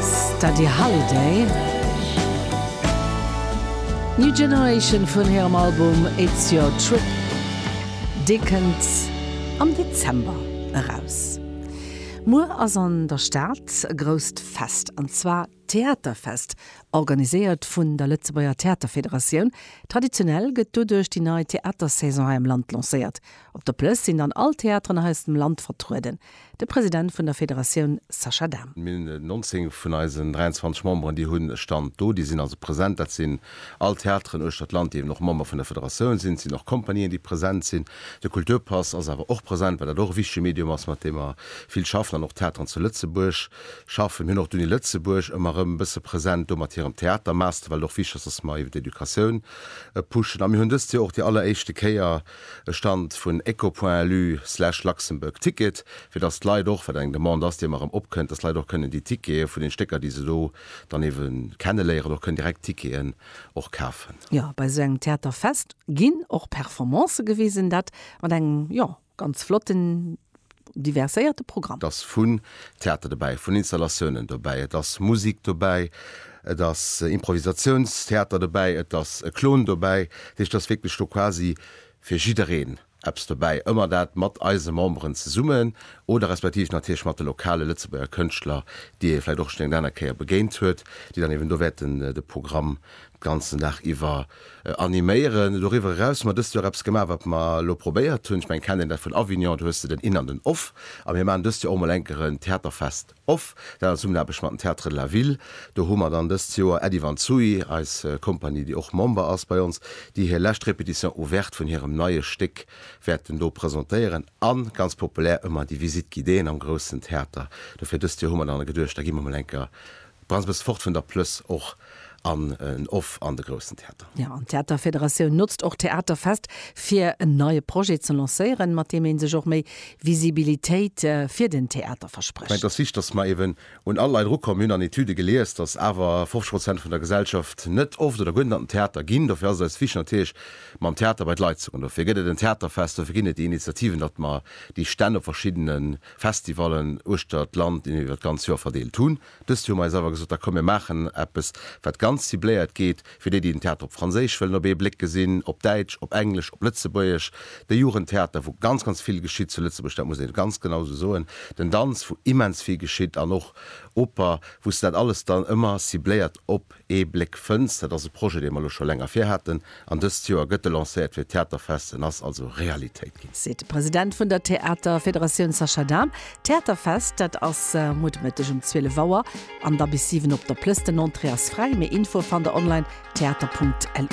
Steady Holiday, New Generation vun hirem Album It's Your Trip, dee kënnt am Dezember eraus. Muer ass an der Stad e grousst Fest, an zwar d'Theaterfest, organiséiert vun der Lëtzebuerger Theaterfederatioun. Traditionell gëtt doduerch déi nei Theatersaison hei am Land lancéiert. Op der Plëss sinn dann all d'Theateren hei aus dem Land vertrueden. De President vun der Federatioun Sascha Dahm. Mir hunn 19 vun eisen 23 Memberen, déi hu Stand do, déi sinn also present. Dat sinn all Theateren uechter d'Land, déi eben och Member vun der Federatioun sinn. Et sinn och Compagnien, déi present sinn. De Kulturpass ass awer och present, well dat och e wichtege Medium ass, mat deem mer vill schaffen an och d'Theateren zu Lëtzebuerg schaffen. Mir hunn och d'Uni Lëtzebuerg ëmmer erëm e bësse present do mat hirem Theatermaster, well et och wichteg ass, datt mer eben d'Educatioun pushen. A mir hunn dëst Joer och déi alleréischte Kéier, e Stand vun eco-point-lu slash Luxembourg Ticket, fir datt d'Leit och, wat eng Demande ass, déi ëmmer erëm opkënnt, datt d'Leit och kënnen déi Tickete vun den Stécker, déi se do dann eebe kenneléieren, och kënnen direkt Ticketen och kafen. Jo, bei esou engem Theaterfest ginn och Performancë gewisen, dat mat engem, jo, ganz flotten diverséierte Programm. Et ass vun Theater dobäi, vun Installatiounen dobäi, et ass Musik dobäi, et ass Improvisatiounstheater dobäi, et ass e Klon dobäi. Dat heescht, et ass wierklech do quasi fir jiddereen eppes dobäi. Ëmmer dat mat eise Memberen zesummen oder respektiv natierlech mat de lokale Lëtzebuerger Kënschtler, déi ee vläicht och schonn eng aner Kéier begéint huet, déi dann eeben do wäerten de Programm d'ganzen Dag iwwer. animéieren. Doriwwer eraus hu mer dëst Joer eppes gemaach, wat mer elo probéiert hunn, ech mengen, kennt een dat vun Avignon, do hues de den In an den Off. A mir maachen dëst Joer och emol eng Kéier en Theaterfest Off, dat an Zesummenaarbecht mat dem Théâtre de la Ville. Do hu mer dann dëst Joer Äddi van Zuy, eis Kompanie, déi och Member ass bei ons, déi hir lescht Répétition ouverte vun hirem neie Stéck wäerten do presentéieren. A ganz populär ëmmer déi Visite guidéeën am groussen Theater. Dofir dëst Joer hu mer dann geduecht, da gi mer emol eng Kéier Brauns bëss fort vun der Plëss och an en Off an de groussen Theater. Jo, an d'Theaterfederatioun notzt och d'Theaterfest fir en neie Projet ze lancéieren, mat deem ee sech och méi Visibilitéit fir den Theater Ich mengen, et verspricht. ass wichteg, datt mer eeben un all Leit erukommen. Mir hunn an Etüde gelies, datt awer 50 Prozent vun der Gesellschaft net oft oder guer net an den Theater ginn. Dofir ass et eis wichteg natierlech, mam Theater bei d'Leit ze goen. Dofir gëtt et en Theaterfest, dofir ginn et déi Initiativen, datt mer déi Stänn op verschiddene Festivalen uechter d'Land, iwwer d'ganz Joer verdeelt hunn. Dëst Joer hu mer eis awer gesot, da komm mir maachen eppes, wat ganz cibléiert geet, fir déi, déi den Theater op Franséisch wëllen op ee Bléck gesinn, op Däitsch, op Englesch, op Lëtzebuergesch, de Jugendtheater, wou ganz, ganz vill geschitt zu Lëtzebuerg, dat muss ee ganz genau esou soen, den Danz, wou immens vill geschitt an och Oper, wou s de dat alles dann ëmmer cibléiert op Ee Bléck Fënns, dat ass e Projet, dee mer elo scho länger vir haten, an dëst Joer gëtt e lancéiert fir d'Theaterfest. En ass also Realitéit ginn. Seet de President vun der Theaterfederatioun Sascha Dahm. D'Theaterfest, dat ass muer de Mëtteg um 12 Auer an da bis 7 op der Plëss. Den Entrée ass fräi. Méi Infoe fannt der online, theater.lu.